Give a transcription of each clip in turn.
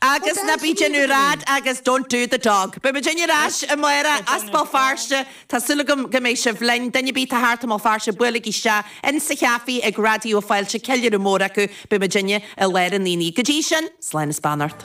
Agus ná bídh in úr fhad agus don't do the dog. Beidh muidinne ar ais amárach as Béal Feirste. Tá súil agam go mbeidh sibh linn. Duine ar bith atá thart i mBéal Feirste buailigí isteach in sa chaifé ag Raidió Fáilte. Ceiliúradh mór acu. Beidh muidinne i lár an aonaigh. Go dtí sin, slán is beannacht.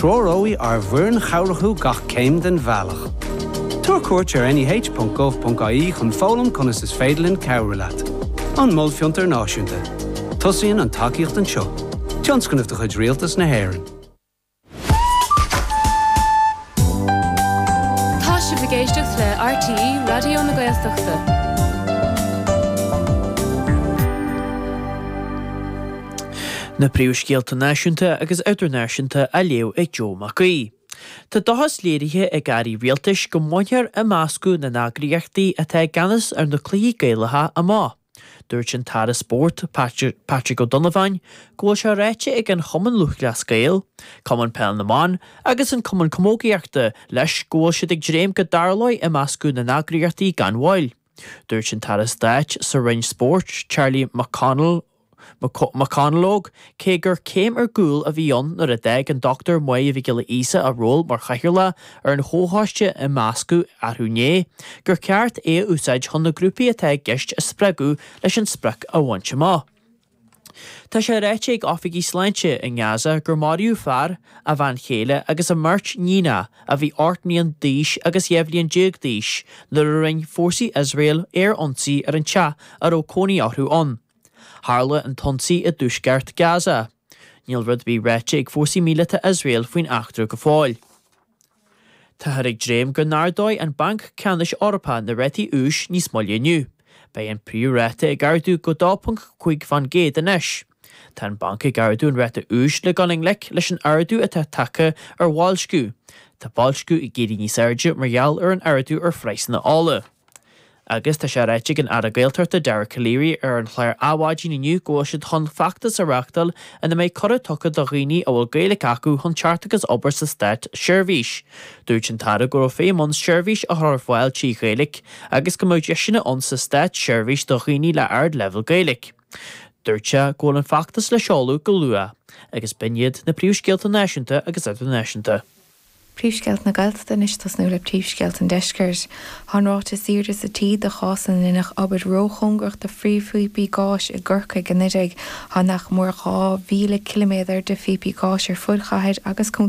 Treoróidh ár bhfoireann chabhrach thú gach céim den bhealach. Tabhair cuairt ar neh.gov.ie chun foghlaim conas is féidir linn cabhrú leat. An Mol Fiontair Náisiúnta. Tosaíonn an tacaíocht anseo. Tionscnamh de chuid Rialtas na hÉireann. Tá sibh ag éisteacht le RTÉ Raidió na Gaeltachta. Na príomhscéalta náisiúnta agus idirnáisiúnta á léamh ag Joe Mac Aoidh. Tá dóchas léirithe ag airí rialtais go mbainfear imeascadh na n-eagraíochtaí atá i gceannas ar na cluichí Gaelacha amach. Dúirt an tAire Spóirt, Patrick O'Donovan, go bhfuil sé ráite ag an Chumann Lúthchleas Gael, Cumann Peil na mBan agus an Cumann Camógaíochta leis go bhfuil siad ag dréim go dtarlóidh imeascadh na n-eagraíochtaí gan mhoill. Dúirt an tAire Stáit sa Roinn Spóirt, Charlie McConalogue, cé gur céim ar gcúl a bhí ann nuair a d'fhág an Dr Máire Mhic Giolla Íosa a ról mar chathaoirleach ar an chomhchoiste imeascadh arú inné, gur cheart é a úsáid chun na grúpaí atá i gceist a spreagadh leis an sprioc a bhaint amach. Tá sé ráite ag oifigigh sláinte i nGaza gur maraíodh fear, a bhean chéile agus a mbeirt nigheanna a bhí ocht mbliain d'aois agus dhá bhliain déag d'aois nuair a rinne fórsaí Iosrael aer-ionsaí ar an teach a raibh cónaí orthu ann. Tharla an t-ionsaí i dtuaisceart Gaza. Níl rud ar bith ráite ag fórsaí míleata Iosrael faoin eachtra go fóill. Táthar ag dréim go n-ardóidh an Banc Ceannais Eorpach na rátaí úis níos moille inniu. Beidh an príomhráta ag ardú go 2.5 fán gcéad anois. Tá an banc ag ardú an ráta úis le dul i ngleic leis an ardú atá tagtha ar bhoilsciú. Tá boilsciú ag éirí níos airde mar gheall ar an ardú ar phraghsanna ola. Agus tá sé ráite ag an Aire Gaeltachta Dara Calleary ar an chlár Adhmhaidin inniu go bhfuil siad chun feachtas a reachtáil ina mbeidh cuireadh tugtha do dhaoine a bhfuil Gaeilic acu chun teacht agus obair sa Státseirbhís. Dúirt an tAire go raibh feidhm ann seirbhís a chur ar fáil trí Ghaeilic agus go mbeadh deiseanna ann sa Státseirbhís do dhaoine le ardleibhéal Gaeilic. Dúirt sé go bhfuil an feachtas le seoladh go luath. Agus b'in iad na príomhscéalta náisiúnta agus idirnáisiúnta. Príomhscéalta na Gaeltachta anois tosnú le príomhscéalta an Deiscirt. Tá an ráta is airde sa tír de chásanna inar deineadh obair róchóngarach do phríomhphíopaí gáis i gCorcaigh anuraidh. Tá nach mór 2,000 ciliméadar de phíopaí gáis ar fud chathair agus